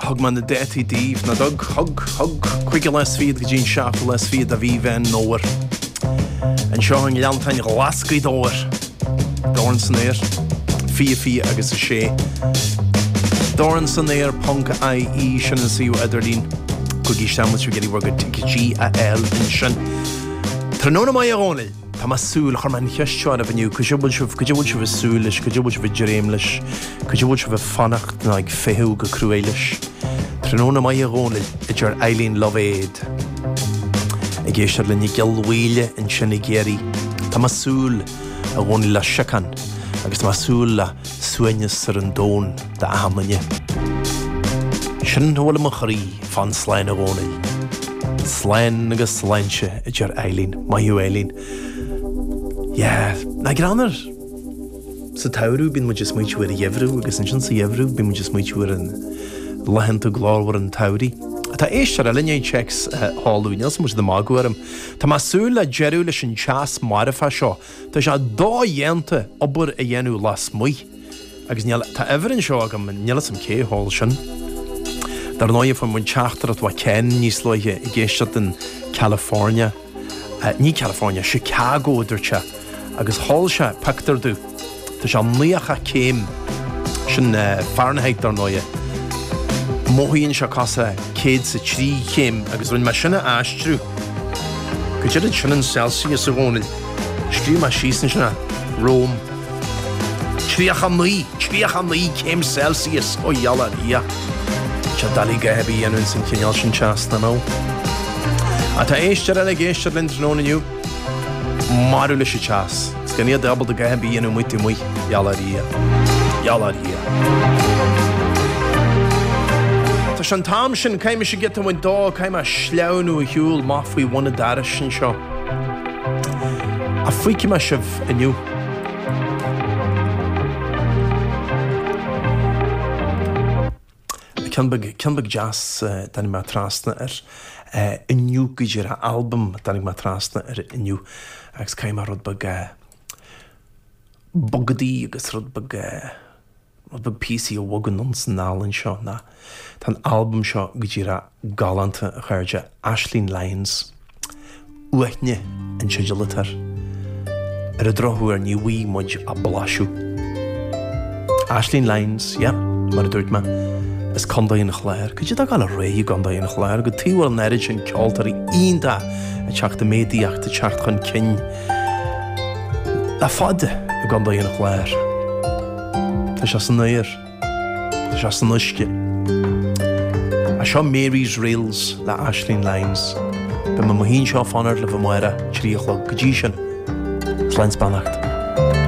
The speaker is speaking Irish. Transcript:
Thug mé na détaí díbh, nach dtug, thug, thug, cúigiú lá is fichead go dtí an seachtú lá is fichead de Mhí Mheán Fómhair. Anseo in Oileán an tSáin, Glascaí, Gaoth Dobhair, dorn san aer, fiche fiche agus a sé. Dorn san aer ponc IE sin an suíomh idirlín. Gabhaigí isteach má tá sibh ag iarraidh bhur gcuid ticéadaí a fháil ansin. Tráthnóna maith a Dhónaill! Tá mé ag súil, chuir mé an cheist seo oraibh inniu, cad é a bhfuil sibh, cad é a bhfuil sibh ag súil leis, cad é a bhfuil sibh ag dréim leis, cad é a bhfuil sibh ag fanacht nó ag feitheamh go cruaidh leis? Tráthnóna maith a Dhónaill, a deir Eileen Lovade, ag éisteacht le linn i gCill Mhaoile ansin i gCiarraí. Tá mé ag súil, a Dhónaill, le síocháin agus tá mé ag súil le suaimhneas ar an domhan. dá mb'fhéidir é. Sin a bhfuil i mo chroí fán tsláinte, a Dhónaill. Slán agus sláinte, a deir Eileen. Maith thú, Eileen. Yeah. Nach greannmhar! Sa tsamhradh bíonn muid ag smaoitiú ar an gheimhreadh agus ansin sa gheimhreadh bíonn muid ag smaoitiú ar laethanta glórmhara an tsamhraidh. Tá éisteoir eile i dtéacs. Halló, níl sé ag baint de mhagadh orm. Tá mé ag súil le deireadh leis an teas marfach seo. Tá sé dodhéanta obair a dhéanamh lasmuigh. Agus níl, tá uimhir anseo agam, níl 'fhios a'm cé a sheol sin. Dar ndóigh fuair muid teachtaireacht ó Ken níos luaithe ag éisteacht in California, ní California, Chicago a dúirt sé, agus sheol sé pictiúr de, tá sé nócha céim, sin Fahrenheit dar ndóigh, mothaíonn sé cosúil le céad 's a trí chéim agus rinne mé sin a aistriú go, cad é sin in Celsius a Dhónaill, scríobh mé síos ansin é, Rome. 39, 39 céim Celsius ó i ngeall ar Dhia. Is doiligh a dhath a bheith ag dhéanamh ins an chineál sin teasa. No, no. Tá éisteoir eile ag éisteacht linn tráthnóna inniu? Maraithe leis an teas. Is gan é ábalta a dhath a bheith ag dhéanamh amuigh amuigh. Gheall ar Dhia. Gheall ar Dhia. Tá sé an t-am sin, caithfidh mise giota a bhaint de, caithfidh mé a shleamhnú ar shiúl, má fhaighim buntáiste anseo. Ach feicfidh mé sibh inniu? Ceann beag deas, tháinig mé trasna air inniu, go díreach, albam a dtáinig mé trasna air inniu agus caithfidh mé rud beag bogadaí agus rud beag. Rud beag píosaí a bhogann ins an ealaín seo ná tá an albam seo go díreach galánta, a chairde. Aisling Lyons. Uaithne an teideal atá air. Ar an drochuair ní bhfuighidh muid ach blaiseadh. Aisling Lyons, yep, mar a dúirt mé, as Condae an Chláir. Cad é tá ag gabháil ar aghaidh i gCondae an Chláir? Cad é a bhfuil an oiread sin ceoltóirí iontacha ag teacht i méadaíocht, ag teacht chun cinn le fada i gCondae an Chláir. Tá sé san aer. Tá sé san uisce. Is seo Mary's Reels le Aisling Lyons. Beidh mé i mo shuí anseo faraibh amárach a trí a chlog. Go dtí sin, slán is beannacht.